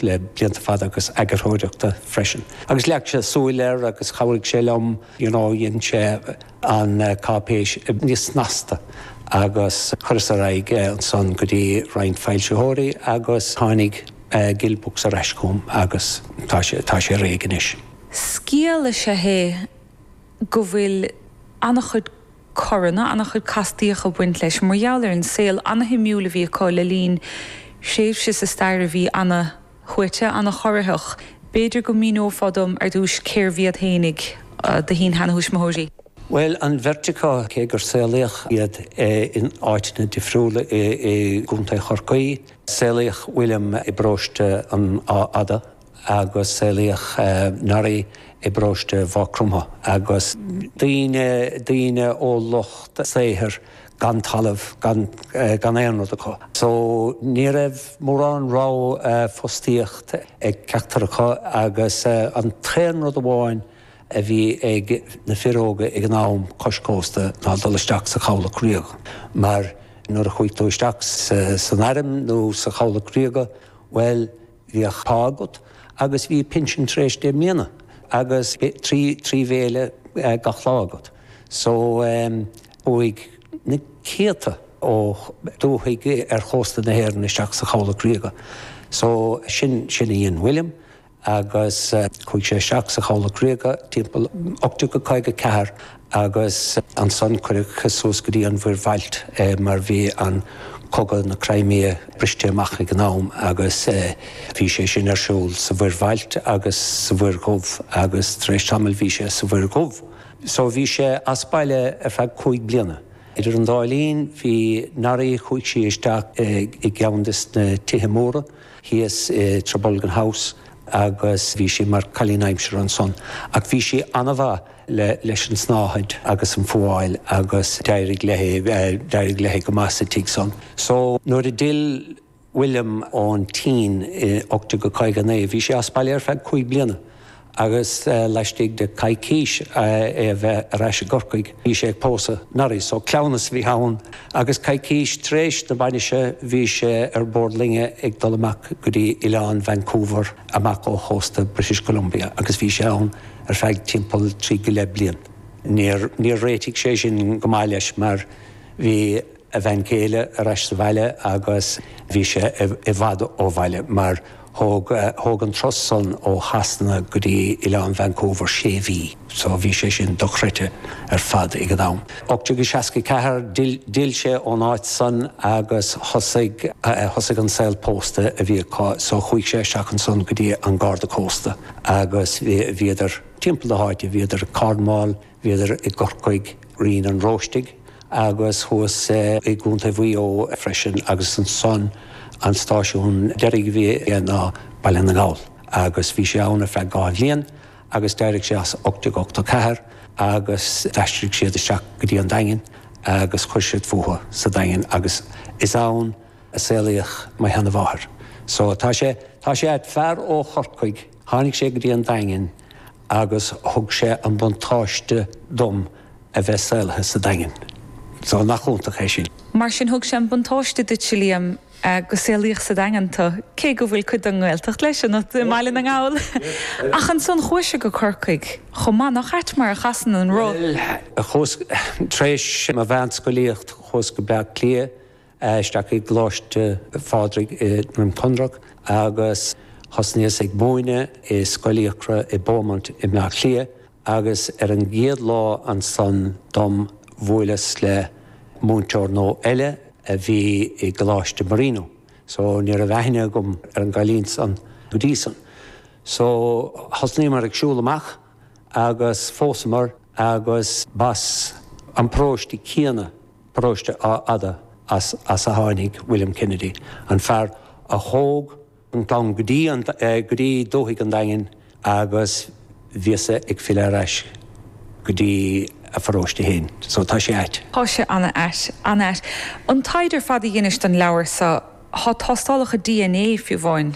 le blianta fada agus eagarthóireachta freisin. Agus leag sé súil air agus chabhraigh sé liom you know dhein sé an cáipéis níos snasta agus cuireadh ar aghaidh é ansan go dtí roinnt foilsitheoirí agus tháinig Gill Books ar ais chugam agus tá sé tá sé réidh anois. Scéal is ea é go bhfuil an-chuid coranna an-chuid castaíocha ag baint leis mar gheall ar an saol ana-shuimiúil a bhí acu le linn thréimhse sa stair a bhí ana-shuaite, ana-chorraitheach. B'fhéidir go míneofá dom ar dtús cérbh iad féin ag do shin-sheantuismitheoirí? Bhuel, an bheirt acu, cé gur saolaíodh iad in áiteanna difriúla i gContae Chorcaí. Saolaíodh William i bparóiste an Achaidh Fhada. agus saolaíodh Norrie i bparóiste Mhaigh Cromtha agus daoine daoine ó lucht saothair gan talamh gan gan aon rud acu so ní raibh mórán ní raibh fostaíocht ag ceachtar acu agus an t-aon rud amháin a bhí ag na fir óga ag an am cois cósta ná dul isteach sa Chabhlach Ríoga mar nuair a chuaigh tú isteach san airm nó sa Chabhlach Ríoga bhuel Bhí pá agat agus bhí pinsean tar éis deich mbliana agus trí bhéile gach lá agat. So, chuaigh na céadta ó dúthaigh ar chósta na hÉireann isteach sa Chabhlach Ríoga. So, sin sin a dhein William agus chuaigh sé isteach sa Chabhlach Ríoga timpeall 1854. Agus ansan cuireadh suas go dtí an Mhuir Bhailt é mar bhí an cogadh na Crimea briste amach ag an am agus bhí sé sin ar siúl sa Mhuir Bhailt agus sa Mhuir Dhubh agus tar éis tamaill bhí sé sa Mhuir Dhubh. So bhí sé as baile ar feadh cúig bliana. Idir an dá linn bhí Norrie, chuaigh sí isteach i gceann de na tithe móra thíos i Trabolgan House agus bhí sí mar cailín aimsire ansan ach bhí sí an-mhaith. leis an tsnáthaid agus an fhuáil agus d'éirigh léi, d'éirigh léi go maith sa tigh san. So nuair a d'fhill William ón tSín i 1859 bhí sé as baile ar feadh cúig bliana agus laistigh de coicís é a bheith ar ais i gCorcaigh bhí sé ag pósadh Norrie. So cleamhnas a bhí ann agus coicís tar éis na bainise bhí sé ar bord loinge ag dul amach go dtí oileán Vancouver amach ó chósta British Columbia agus bhí sé ann ar feadh timpeall trí go leith bliain. Níor réitigh sé sin go maith leis mar bhí a bhean chéile ar ais sa bhaile agus bhí sé i bhfad ó bhaile mar thóg an turas san ó Shasana go dtí Oileán Vancouver sé mhí so bhí sé sin dochreidte ar fad ag an am. 1864, D'fhill sé ón áit san agus thosaigh an saol pósta a bhí acu so chuaigh sé isteach ansan go dtí an Garda Cósta. agus bhíodar timpeall na háite, bhíodar i Cornwall, bhíodar i gCorcaigh, Rinn an Róistigh agus thuas i gContae Mhaigh Eo freisin agus ansan an stáisiún deiridh a bhí aige ná Baile na nGall agus bhí sé ann ar feadh dhá bhliain agus d'éirigh sé as 1884 agus d'aistrigh siad isteach go dtí an Daingean agus chuir siad fúthu sa Daingean agus is ann a saolaíodh mo sheanmháthair. So tá sé, tá sé ait, fear ó Chorcaigh, tháinig sé go dtí an Daingean agus thug sé an buntáiste dom a bheith saolaithe sa Daingean. So nach iontach é sin. Mar sin thug sé an buntáiste duit, a Liam, go saolaíodh sa Daingean tu, cé go bhfuil cuid den nGaeltacht leis, i mBaile na nGall. Ach ansan chuais-se go Corcaigh chomh maith. Nach ait mar a chasann an roth? Bhuel, chuas, tar éis mo mheánscolaíocht, chuas go Bleá Cliath. isteach i gColáiste Phádraig i nDroim Conrach agus thosnaíos ag múineadh i Scoil Fhiacra i Beaumont i mBleá Cliath agus ar an gcéad lá ansan dom bhuaileas le múinteoir nua eile a bhí i gColáiste Marino so ní raibh aithne agam ar an gcailín san go dtí san. So thosnaíomar ag siúl amach agus phósamar agus b'as an bparóiste céanna Paróiste Achadh Fhada as a tháinig William Kennedy, an fear a thóg an clann go dtí dúthaigh an Daingin agus bhíos ag filleadh ar ais go dtí a pharóiste fhéin so tá sé ait. Tá sé ana ait, ana ait. An taighde ar fad a dheinis don leabhar so, tá tástálacha dna fiú amháin,